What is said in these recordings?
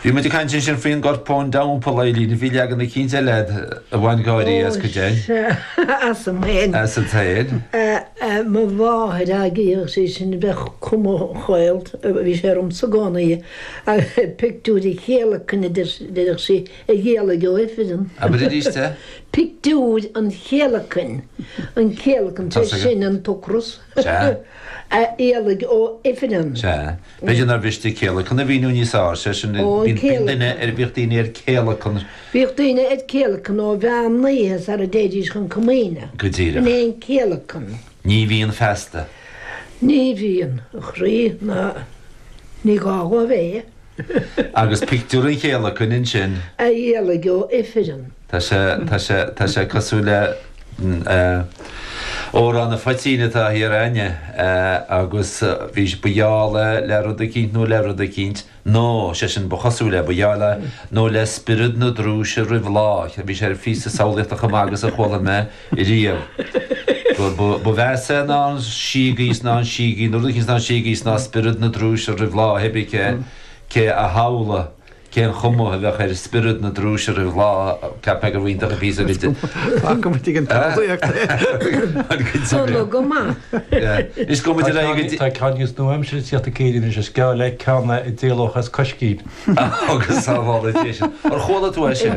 Bhí muid ag caint ansin faoin gcorpán dhamhpal Eileen a bhí leagan cainte leath a bhain gáirí as go deimhin. Ó, as an tsaol. As an tsaol. Mo mháthair agaidh agus é sin a bheadh cuma chaillte, bhí sé ormsa i gcónaí, pictiúr an chéalacain a déarfadh sí a dh'éalaigh ó ifreann. Abair arís é. Pictiúr an chéalacain, an céalacan, sé sin an t-ocras, a dh'éalaigh ó ifreann. Sea. B'fhéidir nár mhiste 'céalacan' a mhíniú níos fearr, sé sin nuair a bhíonn duine ar, bhíodh daoine ar céalacan. Bhíodh daoine ar céalacan ó mheán an oíche sara dtéidís chun comaoine. Go díreach. Sin é an céalacan. Ní bhíonn feasta. Ní bhíonn, a chroí, ná ní gá dhó a bheith. Agus pictiúr an chéalacain ansin. A dh'éalaigh ó ifreann. Tá sé, tá sé, tá sé cosúil le Amhrán an Phoitín atá thiar againne agus bhí sí, ba gheall le, le rud eicínt nó le rud eicínt, nó, sé sin, ba chosúil le, ba gheall le, nó le spiorad na drúise roimh lá, a bhí sé ar phíosa samhlaíochta chomh maith agus a chuala mé riamh, gur, ba, ba mheasa é ná an síogaí is ná an síogaí nó rud eicínt is ná an síogaí is ná spiorad na drúise roimh lá, cibé cé, cé a shamhlaigh. Cén chuma a bheadh ar spiorad na drúise roimh lá cheapfá gur iontach an píosa de a bheith ag an tsamhlaíocht é? Tá ceann níos nua-aimseartha de shaolta Gaeilge anois, is geall le ceann é a d'éalódh as coiscín. Agus sábháladh é sin. Ar chuala tú é sin?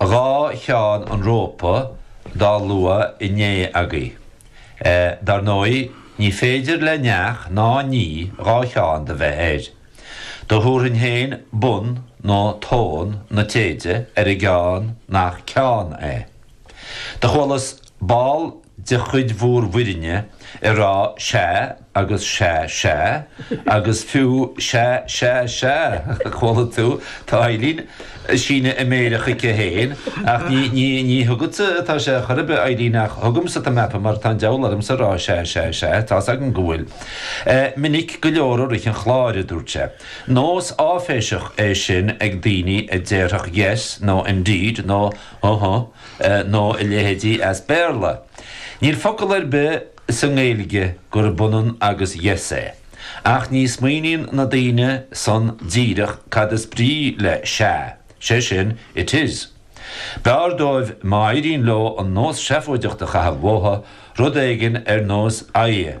Dhá cheann an rópa dá lua inné agaibh. Dar ndóigh, ní féidir le neach ná ní dhá cheann do bheith air. Do thabharfainn fhéin bun nó tón na téide ar an gceann nach ceann é. Do chualas ball de chuid bhur bhfoirne ag rá sea agus sea sea agus fiú sea sea sea, chuala tú, tá Eileen, ag síneadh a méire chuici féin, ach ní, ní, ní chugatsa atá sé chor ar bith Eileen ach chugamsa atá mé mar tá an deabhal ormsa a rá sea sea sea, tá's agam go bhfuil. Minic go leor i rith an chláir, a dúirt sé. Nós áiféiseach é sin ag daoine a déarfadh yes nó indeed nó Huh-huh. Eh, nó a leithéidí as Béarla. Níl focal ar bith sa nGaeilge gurb ionann agus yes é. Ach ní smaoiníonn na daoine san díreach cad is brí le sea, sé sin, it is. B'fhearr dóibh má éiríonn leo an nós seafóideach a chaitheamh uathu, rud éigin ar nós aye.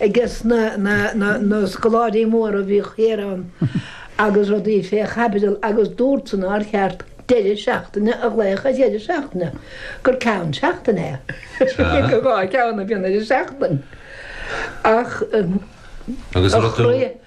Agus na scoláirí móra a bhíodh thiar ann agus rudaí fé chaibidil agus dúirt san nár cheart deireadh seachtaine a ghlaoch ar dheireadh seachtaine, gur ceann seachtaine é. Dhá cheann a bhíonn ar an seachtain ach chloígh.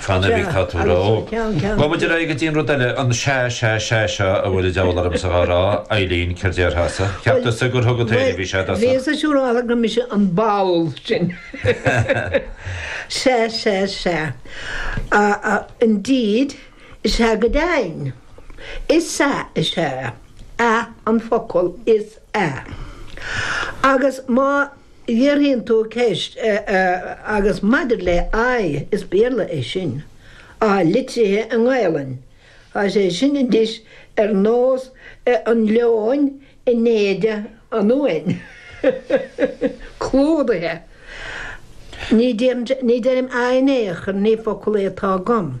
Fan ar bhig tá tú ró. Go bhfuil de ré go dtí an rud eile, an sea, sea, sea seo a bhfuil an diabhal ormsa dhá rá, Eilín, céard déarfása? Cheap tusa gur thug an t-éirí bhí sé do sa? Bhíos ag siúl amhlaidh go mise an ball sin. Sea, sea, sea. Indeed, is ea go deimhin. Is ea, is ea. Ea an focal is ea. Agus má. Fhiafraíonn tú ceist agus maidir le aye, is Béarla é sin. Atá litrithe i nGaelainn. Tá sé sin just ar nós an leoin in éide an uain. Clúdaithe. Ní deirim aye in aon chor, ní focal é atá agam.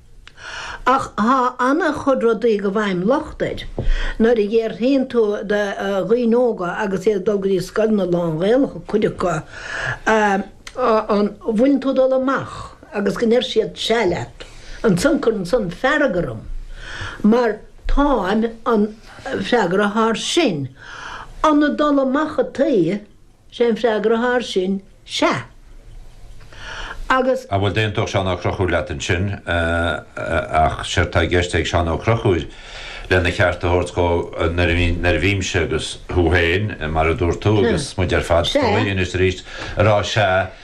Ach tá an-chuid rudaí go bhfaighim locht air nuair a fhiafraíonn tú de dhaoine óga agus iad ag dul go dtí scoileanna lán-Ghaelacha, cuid acu, an bhfuileann tú ag dul amach agus go ndeir siad sea leat. Ansan cuireann san fearg orm mar táim an freagra atá air sin. An ag dul amach ataoi? Is é an freagra atá air sin, Sea. Agus. Bhuel d'aontódh Seán Ó Conchúir leat ansin. Ach séard tá i gceist ag Seán Ó Conchúir, lena cheart a thabhairt dhó, nuair a bhímse, agus thú féin, mar a dúirt tú, agus muid ar fad, is dóigh, anois is arís, ag rá Sea,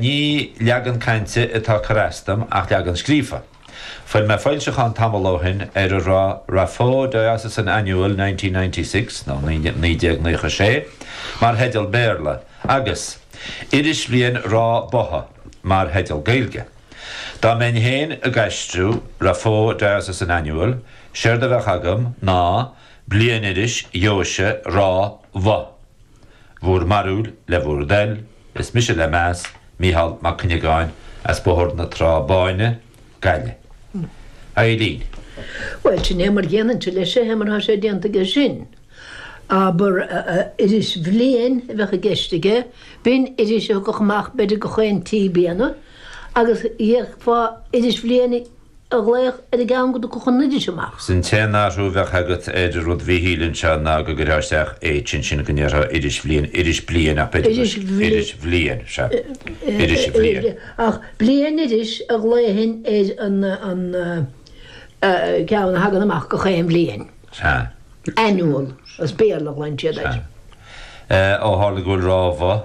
Ní leagan cainte atá ag cur as dom ach leagan scríofa. Fuair mé foilseachán tamall ó shin ar a raibh Raphoe Diocesan Annual 1996, nó 1996, mar theideal Béarla, agus Irisbhliain Ráth Botha mar theideal Gaeilge. Dá mbeinn féin ag aistriú Raphoe Diocesan Annual, séard a bheadh agam ná Bliainiris Dheoise Ráth Bhoth. Bhur mbarúil le bhur dtoil, is mise le meas, Mícheál Mac Cuinneagáin as Bóthar na Trá Báine, Gaillimh. Eilín. Bhuel, sin é mar a dhéanfainnse leis é, mar tá sé déanta aige sin. Abair, irisbhliain a bheadh i gceist aige, b'in iris a thagadh amach b'fhéidir gach aon trí bliana, agus d'fhéadfá irisbhliain a ghlaoch ar an gceann go dtiocfadh an iris amach. 'S an t-aon athrú a bheadh agat ar rud Mhíchíl anseo ná go gcuirtheá isteach H ansin go ndéarfá irisbhliain, iris bliain ach b'fhéidir go irisbhliain, sea, irisbhliain. Ach bliainiris a ghlaofainn ar an gceann a thagann amach gach aon bhliain. Sea. Annual, as Béarla a ghlaonn siad air. Sea. Ó tharla go bhfuil Ráth Bhoth.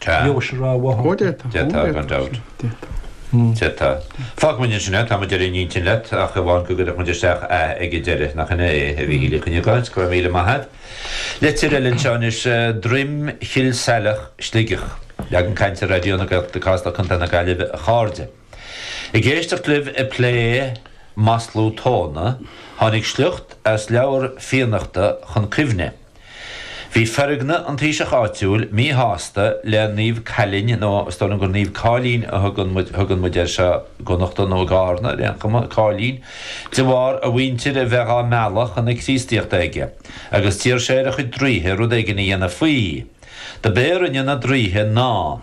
Tá. Dheoise Ráth Bhotha. Ó, d'fhéadfadh. D'fhéadfadh, gan dabht. D'fhéadfadh. D'fhéadfadh. Fágfaidh muid ansin é, tá muid ar aon intinn leat, ach amháin go gcuirfeadh muid isteach 'a' ag an deireadh, nach in é é, a Mhíchíl Mhic Cuinneagáin? Go raibh míle maith a't. Litir eile anseo anois, Droim Chill Saileach, Sligeach. Leagan cainte Raidió na Gaeltachta, Cásla, Co. na Gaillimhe, a chairde. Ag éisteacht libh ag plé masla tóna, tháinig sliocht as leabhar Fiannachta chun cuimhne. Bhí Feargna, an taoiseach áitiúil míshásta le Naomh Caillín, nó is dóigh liom gur Naomh Cáilín a thugann muid, thugann muid air seo i gConnachta nó i gCarna ar aon chuma, Cáilín, de bharr a mhuintir a bheith á mealladh chun na Críostaíochta aige, agus d'iarr sé ar a chuid draoithe rud éigin a dhéanamh faoi. Dob é a rinne na draoithe ná.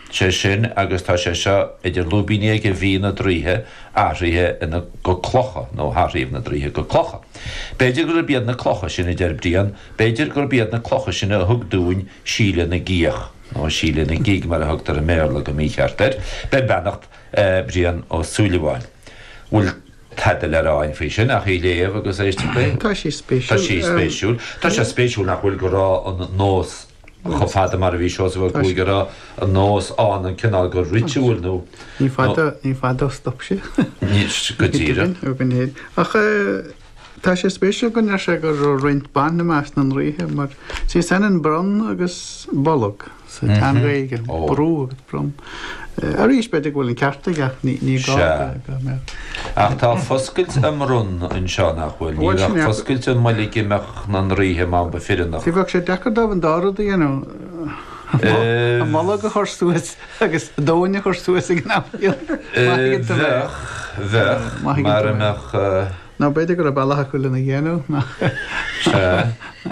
sé sin agus tá sé seo idir lúibíní aige, bhí na draoithe athraithe go clocha, nó hathraíodh na draoithe go clocha. B'fhéidir gurb iad na clocha sin, a deir Brian, b'fhéidir gurb iad na clocha sin a thug dúinn Síle na gcíoch, nó Síle na gig mar a thugtar i mBéarla go mícheart air, beir beannacht Brian Ó Súilleabháin. Bhfuil tada le rá againn faoi sin ach í a léamh agus éisteacht léi? Tá sé spéisiúil. Tá sé spéisiúil. Tá sé spéisiúil nach bhfuil go raibh an nós. Chomh fada mar a bhí Seosamh Ó Cuaig ag rá an nós ann, an cineál go ritual nó. Ní fada, ní fada ó stop sé. Go díreach. Ach tá sé spéisiúil go ndeir sé go raibh roinnt ban i measc na ndraoithe mar is ionann bronn agus bolg sa tSean-Ghaeilge, brú, bronn. Arís, b'fhéidir go bhfuil an ceart aige, ní gá go mbeadh. Ach tá foscailt a mbronn anseo, nach bhfuil? Ní bheadh foscailt a mbolg i measc na ndraoithe má ba fireannach. Ní bheadh sé deacair dóibh an dá rud a dhéanamh, an bolg a chur suas agus an tóin a chur suas ag an am céanna. Bheadh, bheadh, mara mbeadh. Nó b'fhéidir go raibh bealach acu lena dhéanamh nach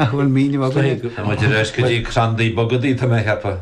bhfuil míniú againn. Tá muid ar ais go dtí crandaí bogadaí, tá mé a cheapadh.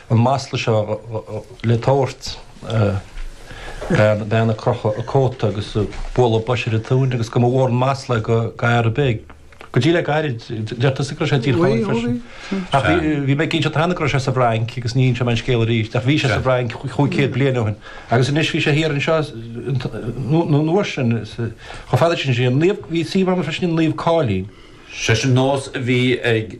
an masla seo le tabhairt bean ag crochadh a cóta agus ag bualadh bois ar a tóin agus go mba mhór an masla é d'fhear ar bith go dtí le gairid, deir tusa go raibh sé i dTír Chonaill freisin. Ach bhí mé ag inseacht cheana go raibh sé sa bhFrainc agus ní inseoidh mé an scéal arís, ach bhí sé sa bhFrainc cúig chéad bliain ó shin. Agus anois bhí sé thiar anseo an uair sin chomh fada sin sé an naomh bhí sí mar freisin an naomh cáilín. Sé sin nós a bhí ag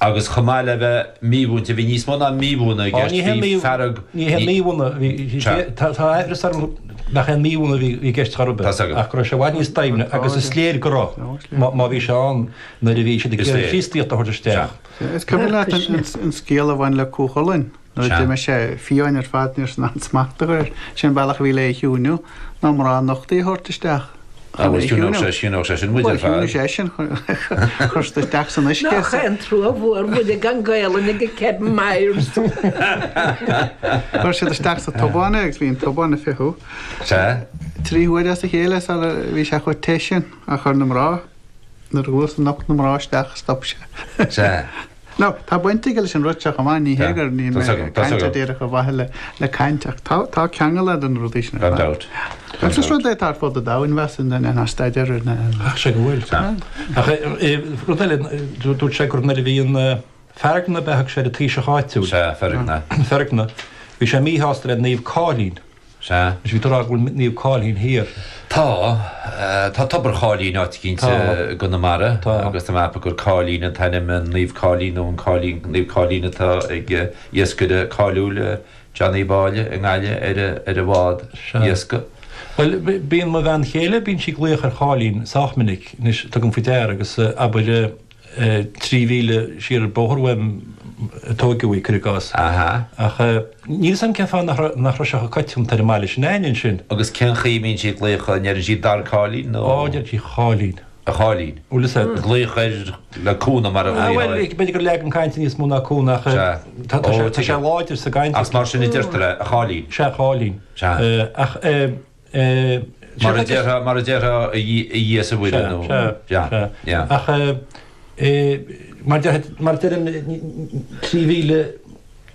Agus chomh maith le bheith mímhúinte, bhí níos mó ná mímhúineadh i gceist, bhí fearg, ní hé mímhúineadh, bhí, tá aimhreas orm nach é an mímhúineadh a bhí i gceist chor ar bith, ach go raibh sé i bhfad níos doimhne agus is léir go raibh, má bhí sé ann nuair a bhí siad ag iarraidh Críostaíocht a thabhairt isteach. Is cuimhin leat an scéal a bhain le Cú Chulainn? Nuair a d'imigh sé, fiáin ar fad, níor fhan aon smacht air, gurb shin an bealach a bhí le é a chiúnú, ná mná nochtaithe a thabhairt isteach chun é a chiúnú. Agus chiúnódh sé sin muid ar fad. Bhuel, chiúnigh seisean chuir sé isteach san uisce. Nach é an trua Mhuire gan Gaelainn ag Kevin Myers. Chuir siad isteach sa tobán é agus bhí an tobán ag fiuchadh. Sea. Trí huaire as a chéile sara bhí sé chomh te sin ach chuir na mná, nuair a chuas an nocht na mná isteach, stop sé. Sea. Nó, tá baint aige leis an rud seo chomh maith, ní hé gur níl mé ag caint díreach ar mhaithe le caint, ach tá, tá ceangal idir na rudaí sin ar fad. Gan dabht. Agus is rud é atá ar fud an domhain, bheadh suim duine ná staidéar a dhéanamh air. Ach sé go bhfuil. Tá. Ach rud eile, dúirt sé gur nuair a bhí an Feargna, bheadh sé ar an taoiseach áitiúil. Sea, Feargna. Feargna. Bhí sé míshásta le Naomh Cáilín. Sea. Anois, bhí tú ag rá go bhfuil Naomh Cáilín thiar. Tá. Tá Tobar Cháilín áit eicínt i gConamara agus tá mé ag ceapadh gur Cáilín an t-ainm, an Naomh Cáilín nó an Cáilín, Naomh Cáilín atá ag iascaire cáiliúil, John Uí Mháille i nGaillimh ar a bhád iascaigh. Bhuel, bíonn mo bhean chéile, bíonn sí ag glaoch ar Cháilín sách minic. Anois, tugaim faoi deara agus, abair, trí mhíle siar an bóthar uaim a tógadh í, cuir i gcás. Ach níl 's agam cén fáth nach raibh sé chomh coitianta ar an mbaile sin againne ansin. Agus cén chaoi a mbíonn sí ag glaoch, an ndeireann sí Dar Cáilín nó. Ó, deir sí a Cháilín. A Cháilín. Bhuel is é. Glaoch air le cúnamh mar a ghlaofá ar. Bhuel, b'fhéidir gur leagan cainte níos mó ná cúnamh ach tá sé láidir sa gcaint. Ach is mar sin a deirtear é, a Cháilín. Sea, a Cháilín. Sea. Ach eh. Mar a déarfá, mar a déarfá, a Dhia is a Mhuire nó. Sea, sea, sea. Sea. Ach mar a deirim, trí mhíle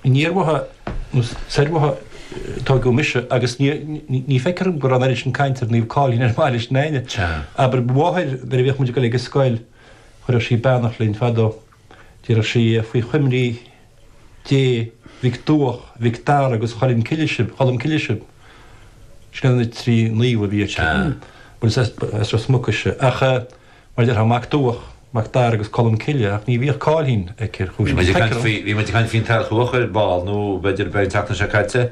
aniar uaithi nó soir uaithi a tógadh mise agus ní feicthear dhom go raibh an oiread sin caint ar Naomh Cáilín ar an mbaile sin againne. Sea. Abair, mo mháthair, nuair a bhíodh muid ag dul ag an scoil, chuireadh sí beannacht linn fadó. Déarfadh sí faoi choimrí Dé Mhic Duach, Mhic Dara agus Cholm Cille sibh, sin iad na trí naomh a bhí aici, bhuel is as Ros Muc ise, ach mar a déarfá, Mac Duach, Mac Dara agus Colm Cille, ach ní bhíodh Cáilín aici ar chúis eicínt. Bhí muid ag caint faoin t-airc luachra ar ball, nó b'fhéidir an tseachtain seo caite.